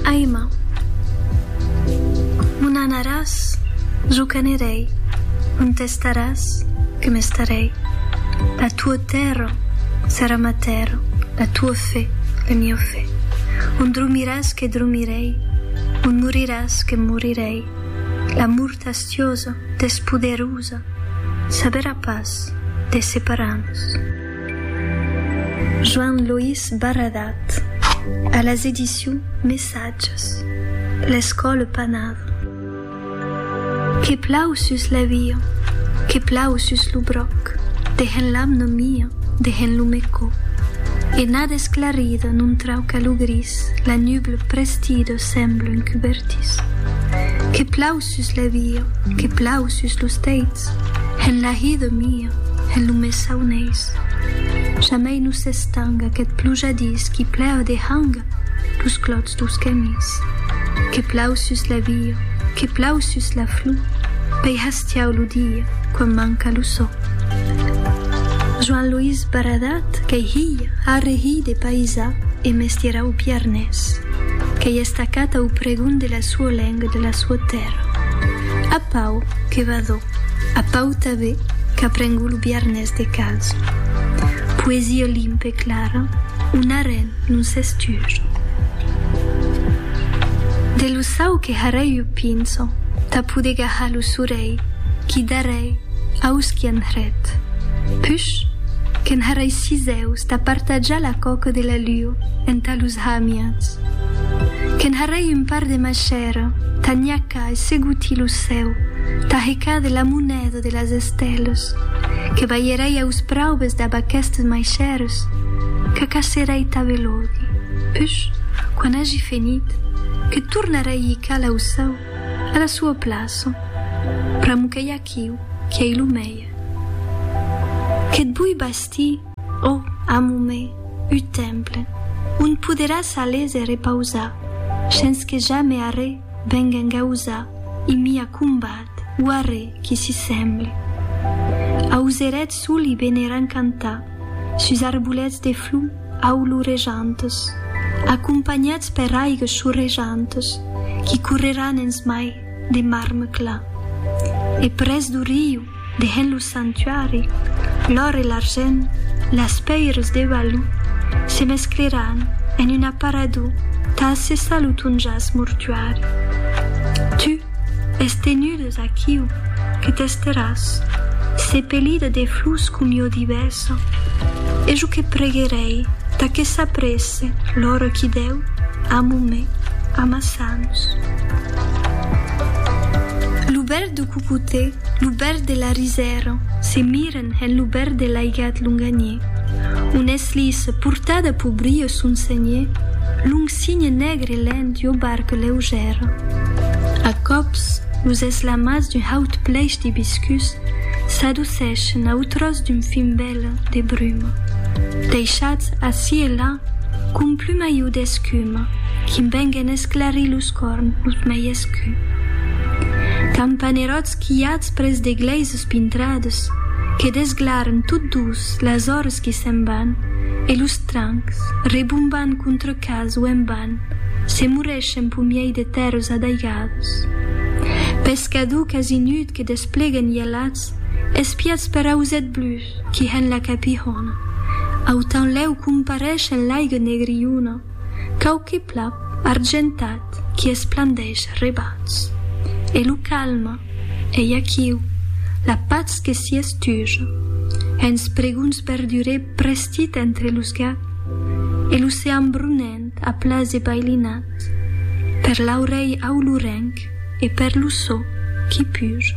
Aima, m'un anaràs, jo qu'anirèi, m'un testaràs, que m'estarèi, la tuo tèrra serà ma tèrra, la tuo fe, le mio fe, un dromiràs que dromirèi, un moriràs que morirèi, la mort astiosa, despoderusa, saberà pas de separar-nos. Joan Loís Barradat a las edicions Messatges, l'escòla panada. Que plau sus la via, que plau sus lo bròc, dehen l'amna mia, dehen lo mecò. Ena desclarida non trauca lo gris, la nubla prestida sembla un cubertís. Que plau sus la via, que plau sus lo bròc, dehen l'amna mia, dehen lo mecò. Sus la via que plau sus los teits, en la hi de mia, en lo mes sauneis. Jamei no s'estanga queth plujadís qui plèu dehanga los clots dous camins. Que plau sus la via, que plau sus la flor, pei hastiau lo dia quan manca lo sò. Joan Loís Baradat qu'ei hilh arre hilh de païsà e mestièrau biarnés. Qu'ei estacat au pregon de la. Sua lenga de la sua tèrra. A Pau que va d'o. A Pau tabé qu'aprengo lo biarnés de cals. Poesia limpa e clara, un arren non s'esture. De lo sau que harèi o pinso tà poder gahar lo sorèi qui darèi aus qui an hret. Push que'n harèi sis eus tà partajar la coca de la luo entà los hamians. Que'n harrei un par de machèra, tanhaca e seguti lo cèu, tahecar de la moneda de las estèlas, que balherei aus praubes dab aquestes maichèras, qu'acacerei ta velodi, push, quan agi fenit, que tornarei ical au cèu, a la sua plaça, pr'amo qu'ei aquiu, qui ei lo mèier. Que't bui bastir. Ò, amor me, un temple on poderàs aller se repausar, shens que jamè arrè venga engausar un mia combat o arrè qui s'hi semble. Auserètz sol i beneran cantar sus arbolets de flor aulurejantes, acompanhats per aigues chorrejantes qui correràn ensmai de marme clar. E près do riu, Dehens lo sanctuari, l'òr e l'argent, las pèiras de Baloo, se mescleràn en un aparador tà assessar lo ton jas mortuari. Tu es tenudas aquiu que t'esteràs, sepelida de flors com jo divèsa, e jo que preguerèi tà que s'apresse l'ora qui dèu amo me amassar-nos. Lo bèl de cocotè, lo bèrd de la risèra, se miren en lo bèrd de l'aigat longaniè, on es lisa, portada pau brio son seniè, long signe negre lent d'ua barca leugèra. A còps, los eslamats d'un haut plèish d'ibiscus s'adoceschen au tròç d'un fin vèla de bruma, deishats ací e là com plumaiu d'escuma, quim venguen esclarir los. Corn, los mei escu. Campaneròts quilhats pres de glèises pintrades que desglarn tot dus las ores que se'n van e los trancs, rebomban contra cas o en ban, se morreschen p'o miei de tèrres adaigades. Pescador quasi nud que desplega nielats espiats per ausèt blus qui hèn la capihòna. Autanlèu comparesh en l'aiga negriona. Quauque plap argentat qui esplandeish rebauds. E lo calme, ei aquiu, la patz que s'i estuja. Hens pregunts berdurè prestit entre los gap. E l'ocean brunent a plase bailinat. Per l'aurelh aulurenc e per lo so qui puja.